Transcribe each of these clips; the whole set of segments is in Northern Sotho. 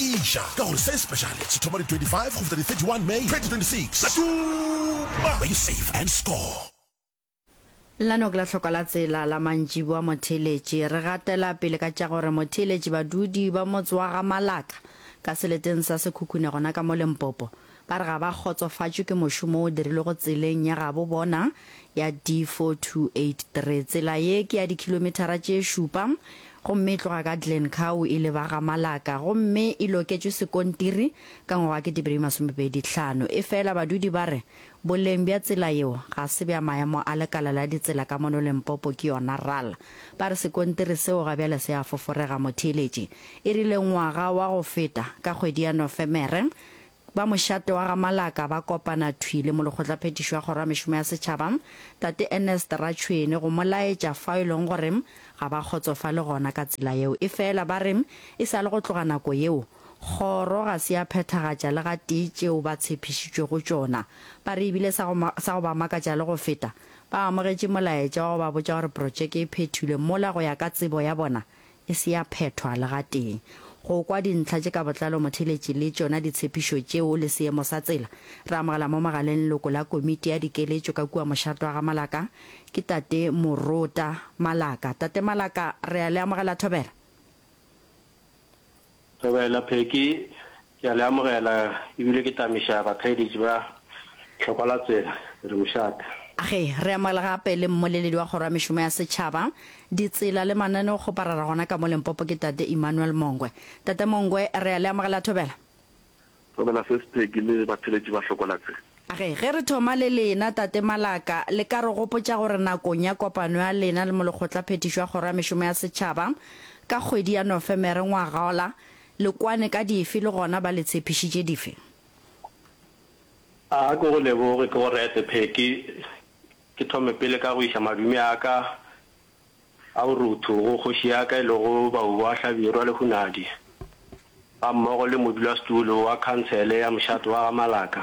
Eja ka gore se sepeshale se thoma di 25 go fihla di 31 May 2026. Šoma! Be you safe and score! Lano ke la hloko la tsela la mantšiboa motheeletši. Re gatela pele ka tša gore motheeletši badudi ba motse wa ga Malaka ka seleteng sa Sekhukhune gona ka mo Limpopo Ba re ga ba kgotsofatšwe ke mošomo o dirilwego tseleng ya gabo bona ya D4283. Tsela ye ke ya dikhilomithara tše šupa gomme e tloga ka Glencow e leba ga Malaka gomme e loketšwe sekontiri ka ngwaga wa ketepeedi masome pedi tlhano. Efela badudi ba re boleng bja tsela yeo ga se bja maemo a lekala la ditsela ka mono Limpopo ke yona ral. Ba re sekontiri seo ga bjale se a foforega. Motheeletši e rile ngwaga wa go feta ka kgwedi ya Nofemere, Ba mošate wa ga Malaka ba kopana thwi le molekgotlaphethiši wa Kgoro ya Mešomo ya Setšhaba, Tate Ernest Ratšhwene go mo laetša fao e lego gore ga ba kgotsofale gona ka tsela yeo. Efela ba re e sa le go tloga nako yeo, Kgoro ga se ya phethagatša le gatee tšeo ba tshephišitšwego tšona. Ba re ebile sa go ba makatša le go feta, ba amogetše molaetša wa go ba botša gore protšeke e phethilwe mola go ya ka tsebo ya bona e se ya phethwa le gatee. Go kwa dintlha tše ka botlalo motheletši le tšona ditshepišo tšeo le seemo sa tsela, re amogela mo mogaleng leloko la Komiti ya Dikeletšo ka kua mošate wa ga Malaka, ke Tate Morota Malaka. Tate Malaka, re a le amogela thobela. Thobela, Pheki, ke a le amogela e bile ke tamiša bakgaeditši ba hlokwa la tsela. Ke re mošate. Age, re amogela gape le mmoleledi wa Kgoro ya Mešomo ya Setšhaba, Ditsela le Mananeo Kgoparara gona ka mo Limpopo ke Tate Emmanuel Mongwe. Tate Mongwe, re a le amogela Thobela. Tlogela se Sipegi le batheletši ba hlokola tse. Ge, ge re thoma le lena, Tate Malaka, le ka re gopotša gore nakong ya kopano ya lena le Molekgotlaphethišo ya Kgoro ya Mešomo ya Setšhaba, ka kgwedi ya Nofemere ngwagaola, le kwane ka dife le gona ba le tshepišitše dife? A ke go leboge, ke go rete, Peggy. Ke thome pele ka go iša madume a ka. A o ruthu go kgoši ya ka e lego Bauboa Hlabirwa Lehunadi gammogo le modulasetulo wa khansele ya mošate wa ga Malaka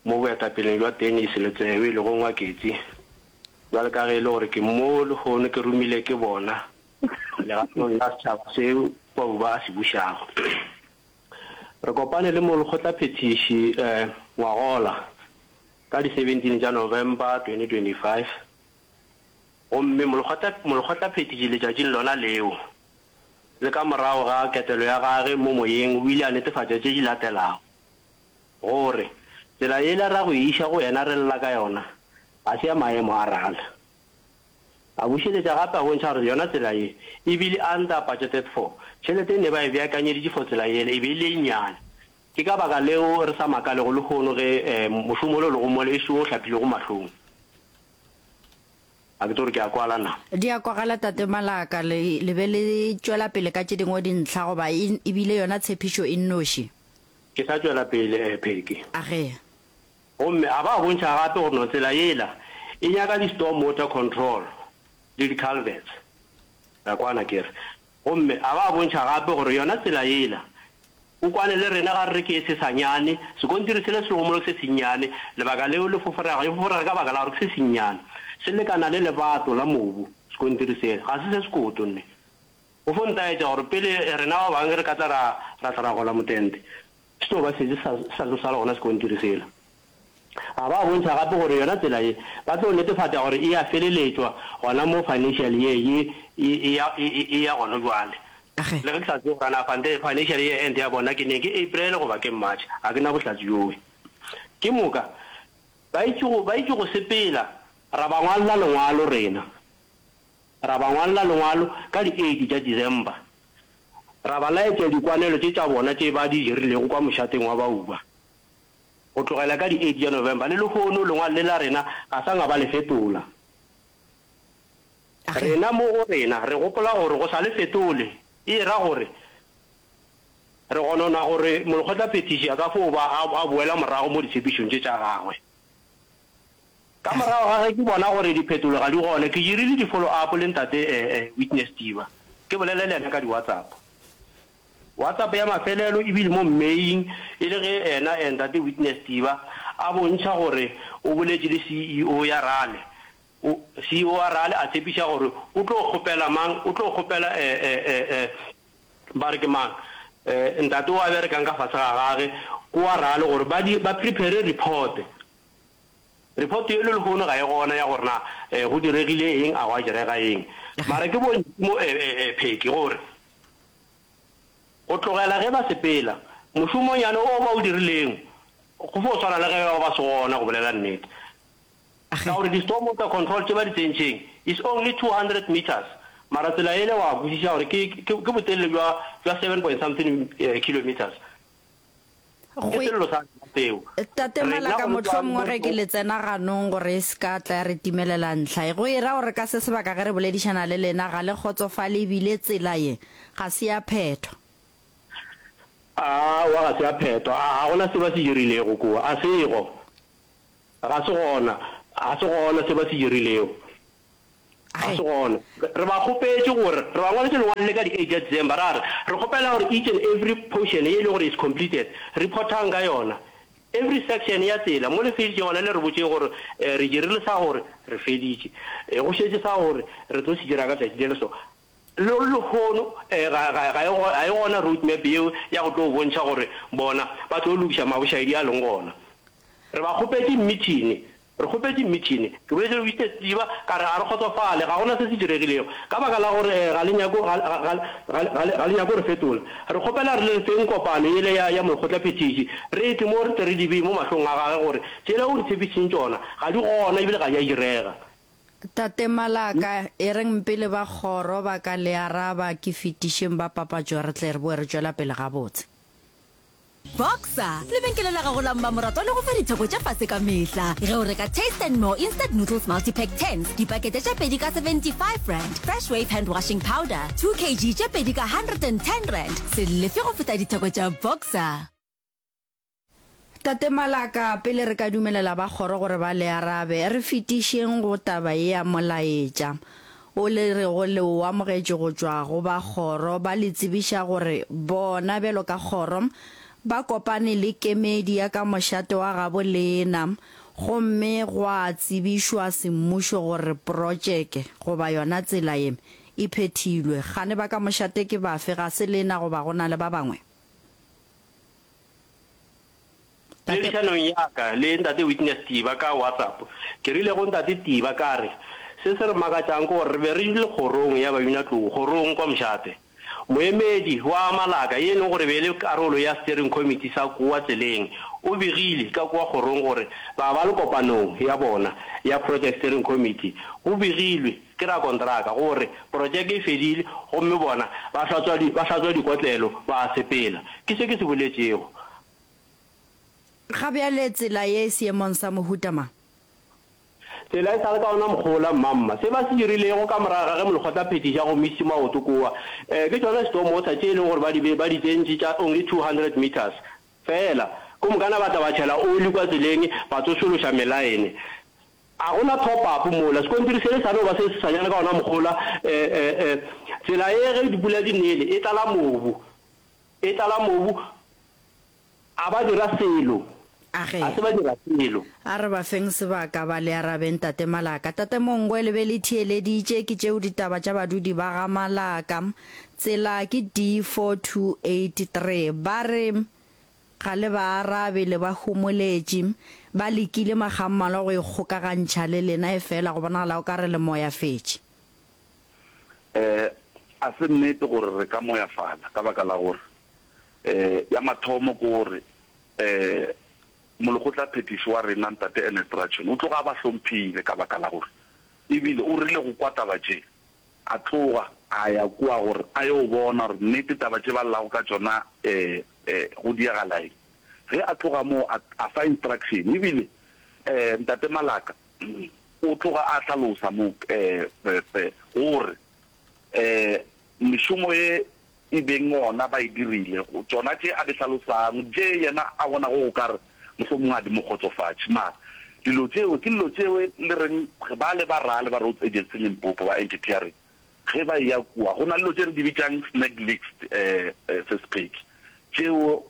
mo boetapeleng bja Dennis Letsewe e lego Ngwaketsi bjale ka ge e le gore ke mo lehono ke romile ke bona legatong la setšhaba se Bauba a se bušago. Re kopane le molekgotlaphethiši Ngwagola ka di 17 tša November 2025. Gomme Molekgotlaphethiši letšatšing lona leo, le ka morago ga ketelo ya Gage mo Moyeng, o ile a netefatša tše di latelago, gore, Tsela yela ra go e iša go Yena re lla ka yona ga se ya maemo a rala. A bušeletša gape a bontšha gore yona tsela ye e bile under-budgeted for, tšhelete e ne ba e beakanyeditše for tsela yela e be e le e nnyane, Ke ka baka leo re sa makalego lehono ge mošomo ole o lego mole e se wo o hlapilego mahlong. Ga ke tsebe gore ke a kwala na. Di a kwagala, Tate Malaka. Le, le be le tšwela pele ka tše dingwe dintlha, goba e, e bile yona tshepišo e nnoši. Ke sa tšwela pele, Peggy. A ge. Gomme a ba a bontšha gape gore no tsela yela e nyaka di-storm water control le di-culverts. Ra kwana, ke re. Gomme a ba a bontšha gape gore yona tsela yela, O kwane le rena ga re re ke se sanyane, sekontiri sela se lego mo le se sennyane, lebaka leo le foforega, e foforega ka baka la gore ke se sennyane. Se lekana le lebato la mobu, sekontiri sela. Ga se se sekoto, nne. O fo ntaetša gore pele rena ba bangwe re ka tla ra, ra tla ra gola motente. Seo ba šetše sa sa tlo sala gona sekontiri sela. A ba bontšha gape gore yona tsela ye ba tlo netefatša gore e a feleletšwa gona mo financial year ye e e ya e e e ya gona bjale. Ge. Le ge ke sa tsebe gore na fante financial year end ya bona ke neng, ke April goba ke March, ga ke na bohlatse bjoo. Ke moka ba etše go ba etše go sepela ra ba ngwalla lengwalo rena. Ra ba ngwalla lengwalo ka di eight tša December, ra ba laetša dikwanelo tše tša bona tše ba di dirilego kwa mošateng wa Bauba. Go tlogela ka di eight tša November le lehono lengwalo le la rena ga sa nga ba le fetola. Rena mo go rena re gopola gore go sa le fetole e ra gore re gonona gore molekgotlaphethiši a ka fo ba a boela morago mo ditshepišong tše tša gagwe. Ka morago ga ge ke bona gore diphetolo ga di gona, ke dirile di-follow up le Ntate Witness Diba, ke bolele le yena ka di-WhatsApp. WhatsApp ya mafelelo e bile mo mmeing e le ge yena Ntate Witness Diba a bontšha gore o boletše le CEO ya rale. CEO wa rale a tshepiša gore o tlo kgopela mang, o tlo kgopela ba re ke mang, ntate o a berekang ka fase ga gage, ko wa rale gore ba prepare report. Report yeno lehono ga e gona ya gore na go diregile eng, a gwa direga eng. Mara ke bontši mo Pheki gore go tlogela ge ba sepela, mošomonyane o ba o dirileng go fo swana le ge ba ba se gona, go bolela nnete. Ka gore di-stormwater control tše ba di tsentšeng is only 200 metres, mara tsela ele wa kwešiša gore ke botelele bja seven point something kilometres. Ke sello sa rena seo. Tate Malaka, mohlomongwe ge ke le tsena ganong gore e se ka tla ya re timelela ntlha ye. Go e ra gore ka se sebaka ge re boledišana le lena ga le kgotsofale e bile tsela ye ga se ya phetho. Aowa ga se ya phetho. A ga gona se ba se dirilego kua? A sego. Ga se gona. Ga se gona se ba se dirilego. Ga se gona. Re ba kgopetše gore, re ba ngwaletše lengwalo le ka di eight tša December, ra re, re kgopela gore each and every portion ye e le gore is completed, reportang ka yona. Every section ya tsela, mo le feditše gona le re botšeng gore, um re dirile sa gore, re feditše. Um go šetše sa gore, re tlo se dira ka tšatši le le so. Le lehono um ga, ga, ga e, ga e gona road map yeo ya go tlo bontšha gore bona ba tlo lokiša mabošaedi a leng gona. Re ba kgopetše mithini, Re kgopetše mmitšhene. Ke boletše go Mister Setsiba, ka re, Ga re kgotsofale. Ga go na se se diregilego. Ka baka la gore ga le nyake, ga, ga, ga, ga, ga le, ga le nyake go re fetola. Re kgopela gore le re feng kopano yela ya, ya molekgotlaphethiši, re epe mo re tle re di bee mo mahlong a gage gore tšela o re tshepišitšeng tšona ga di gona ebile ga di a direga. Tate Malaka, e reng mpele ba kgoro ba ka le araba, ke fetišeng ba papatšo re tle re bowe re tšwela pele gabotse. Boxer, lebenkele la gago la mmamoratwa le go fa ditheko tša fase ka mehla ge o reka Taste and More Instant Noodles Multipack Tins, dipakete tše pedi ka 75 rand, Fresh Wave Hand Washing Powder, 2 kg, tše pedi ka 110 rand. Se lefe go feta ditheko tša Boxer. Tate Malaka, pele re ka dumelela ba kgoro gore ba le arabe, re fetišeng go taba ye ya molaetša. o le rego le o amogetše go tšwa go ba kgoro ba le tsebiša gore bona bjalo ka kgoro ba kopane le kemedi ya ka mošate wa gabo leena gomme gwa tsebišwa semmušo gore protšeke goba yona tsela ye e phethilwe. Kgane ba ka mošate ke bafe? Ga se leena goba go na le ba bangwe? Poledišanong ya ka le Ntate Witness Tiba ka WhatsApp, ke rile go Ntate Tiba ka re, Se se re makatšang ke gore re be re dule kgorong ya baminatlou, kgorong kwa Mshate. Moemedi wa Amalaka, ye e lego gore e be e le karolo ya Steering Committee sa kua tseleng, o begile ka kua kgorong gore ba ba le kopanong ya bona ya Project Steering Committee, go begilwe, Ke rakontraka, go re porotšeke e fedile gomme bona ba hlatswa, ba hlatswa dikotlelo, ba a sepela. Ke se ke se boletšego. Ga bjale tsela ye e seemong sa mohuta mang? Tsela e sa le ka ona mokgwa ola, mmamma. Se ba se dirilego ka morago ga ge molekgotlaphethiši a gomišitše maoto kua, ee, ke tšona Stormwater, tše e lego gore ba di be, ba di tsentše tša only 200 metres feela. Gomokana ba tla ba tšhela oli kua tseleng, ba tsošološa melaene. A go na top up mola? Sekontiri sele sa no ba se seswanyane ka ona mohola. Tsela e ge dipula di nele e tlala mobu, e tlala mobu. A ba dira selo? A ge. A se ba dira selo. A re ba feng sebaka ba le arabe, Ntate Malaka. Tate Mongwe le be le theeleditše, ke tšeo ditaba tša badudi ba ga Malaka. Tsela ke D4283. Ba re, Ga le ba arabe, le ba homoletše. Ba lekile makgammalwa go ikgokagantšha le lena, efela go bonagala o ka re le moyafetše. Ee, a se nnete gore re ka moyafala, ka baka la gore, ee, ya mathomo ke gore, ee, Molekgotlaphethiši wa rena, Ntate Ernest Ratshwene, o tloga a ba hlomphile, ka baka la gore e bile o rile go kwa taba tše. A tloga a ya kua gore a yo bona gore nnete taba tše ba llago ka tšona go diagala eng. Ge a tloga moo a a fa instruction e bile Ntate Malaka o tloga a hlalosa mo gore mešomo ye e beng gona ba e dirile, go tšona tše a di hlalosang, tše yena a bonago o ka re mohlomongwe ga di mo kgotsofatše. Mara dilo tšeo ke dilo tšeo e le reng bale ba rale ba Roads Agency Limpopo ba anti-tearing ge ba eya kua, go na le dilo tše re di bitšang snag leaks, eh, eh, Ses'Pheki, tšeo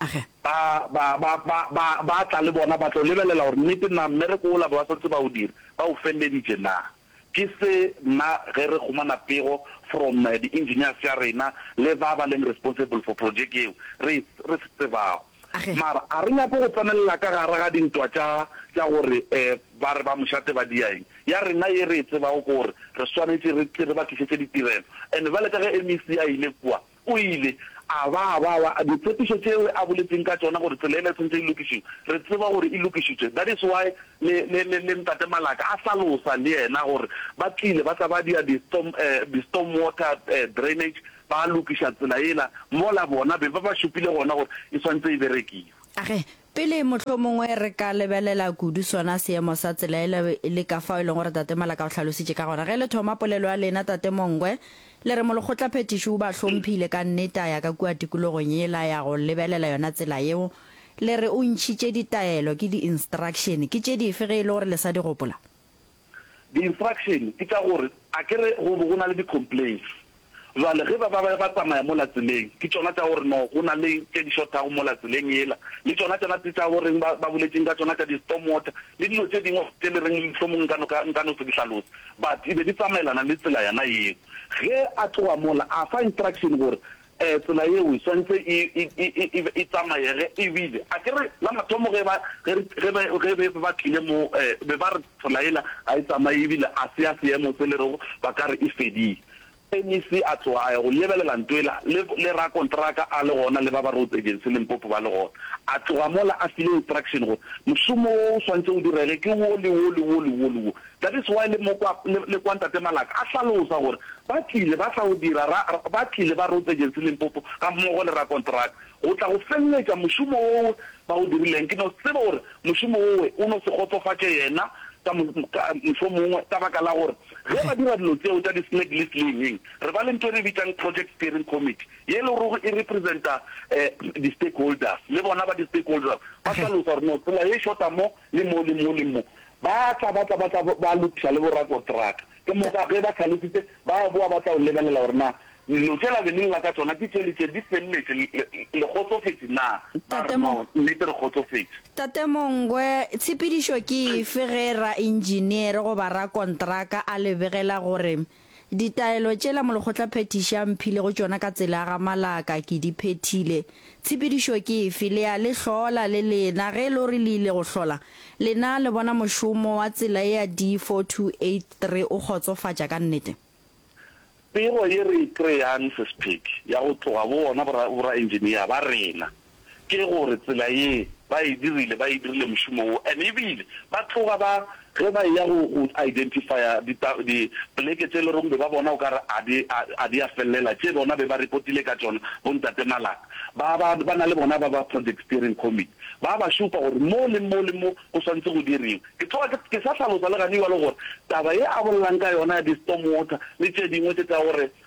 Age. Ba, ba, ba, ba, ba, ba tla le bona, ba tlo lebelela gore nnete na mmereko wola be ba santse ba o dira, ba o felleditše na. Ke se nna ge re humana pego from di-engineers tša rena le ba ba leng responsible for projeke yeo re, re se tsebago. Age. Mara a re nyake go tsenelela ka gare ga dintwa tša, tša gore eh, ba re ba mošate ba dia eng. Ya rena ye re e tsebago ke gore re swanetše re tle re ba tlišetše ditirelo. And bjale ka ge MEC a ile kua, O ile a ba a ba wa ditshepišo tšeo a boletšeng ka tšona gore tsela yela e tshwanetše e lokišiwe. Re tseba gore e lokišitšwe. That is why le, le, le, le Ntate Malaka a hlalosa le yena gore ba tlile ba tla ba dia di storm, eh, di storm water, eh, drainage, ba lokiša tsela yela mola bona be ba ba šupile gona gore e swanetše e berekiwe. A re, Pele, mohlomongwe re ka lebelela kudu sona seemo sa tsela e le, e le ka fao e lego gore Tate Malaka o hlalositše ka gona. Ge le thoma polelo ya lena, Tate Mongwe, le re molekgotlaphethiši o ba hlomphile ka nnete a ya ka kua tikologong yela a ya go lebelela yona tsela yeo. Le re o ntšhitše ditaelo, ke di-instruction. Ke tše dife ge e le gore le sa di gopola? Di instruction ke tša gore akere go bo go na le di complaints jwale ge ba ba ba tsamaya mola tseleng ke tšona tša gore no go na le tše di shothago mola tseleng yela le tšona tšona tse tša goreng ba ba boletšeng ka tšona tša di storm water le dilo tše dingwe tše le reng mohlomong nka no ka nka no se di hlalose but e be di tsamaelana le tsela yona yeo. Ge a tloga mola a fa instruction gore Ee, tsela yeo e swanetše e, e, e, e, e, e tsamayege. E bile, a ke re, la mathomo ge ba, ge re, ge ba, ge be ba tlile mo, eh, be ba re tsela yela ga e tsamaye e bile ga se ya seemo se le rego ba ka re e fedile. MEC a tloga a ya go lebelela nto yela, le, le rakontraka a le gona le ba ba Roads Agency Limpopo ba le gona. A tloga mola a file instruction gore mošomo wo o swanetše o direge ke wo le wo le wo le wo le wo. That is why le mo kwa, le, le kwa Ntate Malaka a hlalosa gore ba tlile ba tla go dira, ra, ba tlile ba Roads Agency Limpopo ga mmogo le rakonteraka go tla go feleletša mošomo wowe ba o dirileng. Ke no tseba gore mošomo wowe o no se kgotsofatše yena ka mo, ka, mohlomongwe ka baka la gore ge ba dira dilo tseo tša di-snag list le eng-eng, re ba le nto e re e bitšang Project Steering Committee ye e lorego e representa, eh, di-stakeholders, le bona ba di-stakeholders ba hlalosa gore no tsela ye e shota mo, Le mo, le mo, le mo. Ba tla, ba tla, ba tla ba lokiša le borakotraka. Ke moka ge ba hlalefitše, ba boa ba tla o lebelela gore na dilo tše la be le lla ka tšona ke tše le tše di feleletše. Le, le, le kgotsofetše na? Ba re, Noo, nnete re kgotsofetše. Tate Mongwe, tshepedišo ke efe ge raentšiniere goba rakontraka a le begela gore Ditaelo tšela molekgotlaphethiši a mphilego tšona ka tsela ya ga Malaka ke di phethile. Tshepedišo ke efe? Le ya le hlola le lena. Ge e le gore le ile go hlola, lena le bona mošomo wa tsela ye ya D4283 o kgotsofatša ka nnete? Pego ye re e kry-ang, Ses'Phedi, ya go tloga go bona bo-ra, bo-ra-engineer ba rena. ke gore tsela ye ba e dirile, ba e dirile mošomo wo and ebile ba tloga ba, ge ba eya go go identifya di ta di pleke tše loreng be ba bona o ka re a di a a di a fellela tše bona be ba repotile ka tšona bo ntate Malaka ba ba ba na le bona ba ba project steering committee ba ba šupa gore mo le mo le mo go swantse go diriwe. Ke tloga ke ke sa hlalosa le gane jwalo gore taba ye a bolelang ka yona ya di storm water le tše dingwe tše tsa gore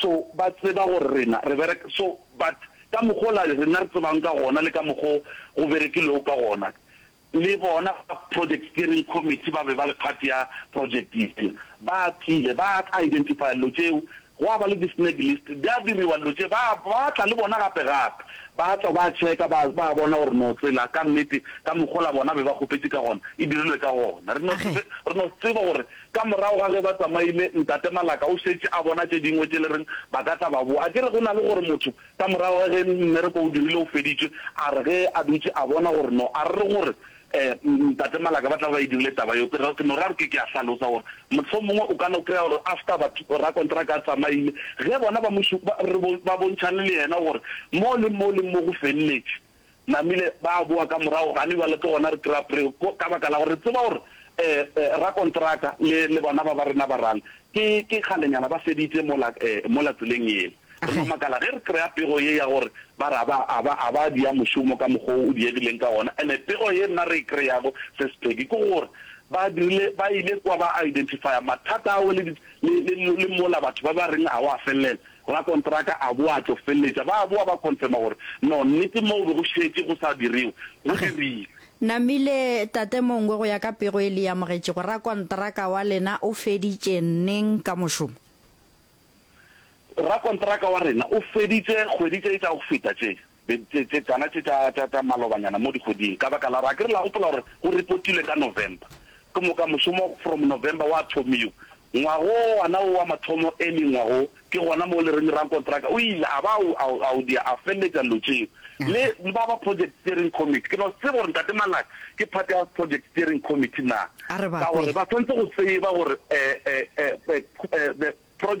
So, ba tseba gore rena re bereka, so, but ka mokg'ola rena re tsebang ka gona le ka mokg'o go berekilwego ka gona, le bona ba Project Steering Committee ba be ba le part ya project yela, ba tlile ba identifya llo tšeo, gwa ba le di-snag list, di a diriwa llo tše, ba, ba tla le bona gape-gape, ba tla ba checka, ba, ba bona gore no tsela ka nnete ka mokg'ola bona be ba kgopetše ka gona e dirilwe ka gona. Re no, re no tseba gore Ka morago ga ge ba tsamaile, Ntate Malaka o šetše a bona tše dingwe tše le reng ba ka tla ba boa. A ke re go na le gore motho, ka morago ga ge mmereko o dirile o feditšwe, a re ge a dutše a bona gore no a re gore um Ntate Malaka ba tla be ba e dirile taba yeo. Ke re ke no ra re ke ke a hlalosa gore mohlomongwe o ka no kry-a gore after batho rakontraka a tsamaile, ge bona ba mo ba re ba bontšhane le yena gore mo le mo le mo go feleletše. namile ba boa ka morago gane bjale ke gona re kry-a pre ka baka la gore re tseba gore um rakontraka le le bona ba ba rena barang ke ke kgalenyana ba feditse mola um mola tseleng ele re no makala ge re kry-a pego ye ya gore ba re aba aba aba dia mošomo ka mokgwa o diegileng ka gona ene pego ye nna re e kry-ago se sepheki ke gore ba dirile ba ile kwa ba identifya mathata ao le le le mola batho ba ba reng a wa felela Rakontraka a boa a tlo feleletša. Ba a boa ba confirma gore, No, nnete moo be go šetše go sa direwe, go dirile. Namile, Tate Mongwe, go ya ka pego e le e amogetšego, rakontraka wa lena o feditše neng ka mošomo? Rakontraka wa rena o feditše kgwedi tše tša go feta tše. be tse, tse, tsana tše tša, tša, tša malobanyana mo dikgweding, ka baka la gore, akere la gopola gore go repotilwe ka November, ke moka mošomo from November wa thomiwa, ngwaga wo wana wo wa mathomo early ngwaga wo, ke gona mo le reng rankontraka o ile a ba a, a, a o dia, a feleletša dilo tšeo, le ba ba project steering committee, ke no se tsebe gore Ntate Malaki ke part ya project steering committee na, A re ba ka gore kwe. ba swanetse go tseba gore, eh, eh, eh, eh, eh, the project.